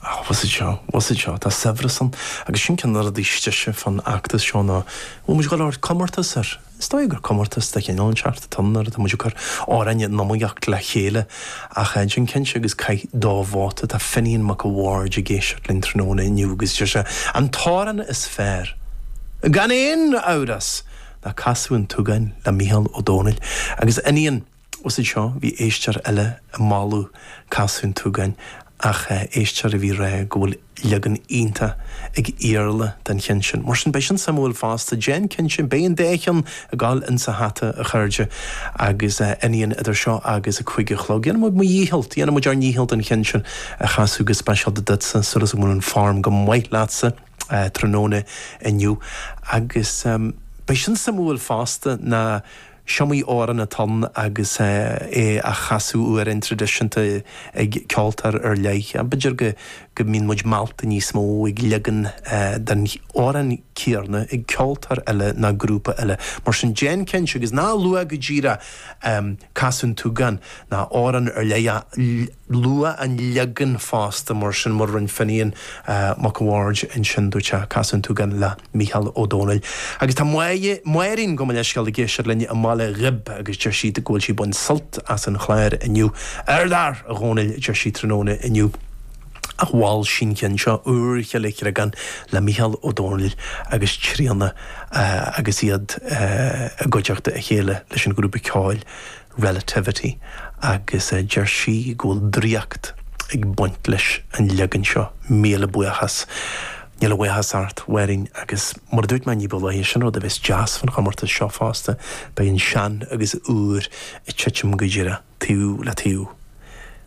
Ach bhfuil fhios agat seo, bhfuil fhios agat seo, tá saibhreas ann agus sin ceann de na rudaí is deise fán fheachtas seo ná go bhfuil muid ag dul a thabhairt comórtais air. Is dóigh gur comórtas de chineál inteacht atá ann óir tá muid ag cur ár n-ealaín in iomaíocht le chéile ach déan cinnte agus caith do vóta. Tá Finian Mac a' Bhaird ag éisteacht linn tráthnóna inniu agus deir sé an t-amhrán is fearr, gan aon amhras, ná Casadh an tSúgáin le Mícheál Ó Domhnaill agus Finian. Bhfuil fhios agat seo bhí éisteoir eile ag moladh Casadh an tSúgáin ach éisteoir a bhí rá go bhfuil leagan iontach ag Iarla den cheann sin. Mar sin, beidh sin suimiúil fosta. Déan cinnte, beidh an dá cheann ag gabháil ins a' hata, a chairde, agus Finian idir seo agus a cúig a chlog. Déanfaidh mé mo dhícheall, déanfaimid ár ndícheall an ceann sin a chasadh go speisialta duitse súil is go mbeidh an form go maith leatsa tráthnóna inniu. Agus beidh sin suimiúil fosta ná. S'iomaí amhrán atá ann agus é á chasadh amhrán traidisiúnta ag ceoltóir ar leith. B'fhéidir go mbíonn muid meallta níos mó ag leagan den amhrán céanna ag ceoltóir eile ná grúpa eile. Mar sin, déan cinnte agus ná luaigh go díreach casadh an tsúgáin ná amhrán ar leith. Luaigh an leagan fosta, mar sin, mar a rinne Finian Mac an Bhaird ansin, dúirt sé, Casadh an tSúgáin le Mícheál Ó Domhnaill. Agus tá Máirín gabh mo leithscéal ag éisteacht linn i mBaile Ghib agus deir sí go bhfuil sí ag baint sult as an chlár inniu. Ardfhear, a Dhomhnaill, a deir sí tráthnóna inniu. Ach mhol sí an cionn seo Úrchill an Chreagáin le Mícheál Ó Domhnaill agus Tríona agus iad i gcuideachta a chéile leis an ghrúpa ceoil, Relativity, agus deir sí go bhfuil draíocht ag baint leis an leagan seo, míle buíochas. Níl a bhuíochas ort, a Mháirín, agus mar a dúirt mé ní ba luaithe, sin rud a bheas deas faoin chomórtas seo fosta, beidh an sean agus an úr ag titim go díreach, taobh le taobh,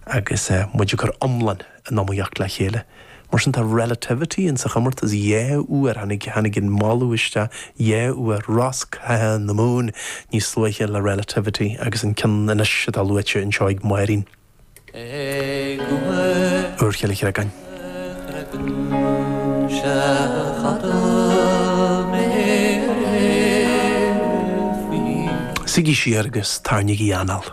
agus muid ag cur an iomláin in iomaíocht le chéile. Mar sin, tá Relativity in sa chomórtas dhá uair, tháinig, tháinig an moladh isteach dhá uair, Rosc Catha na Mumhan níos luaithe le Relativity agus an ceann anois atá luaite anseo ag Máirín. Úrchill an Chreagáin. Suigí siar agus tarraingígí anáil.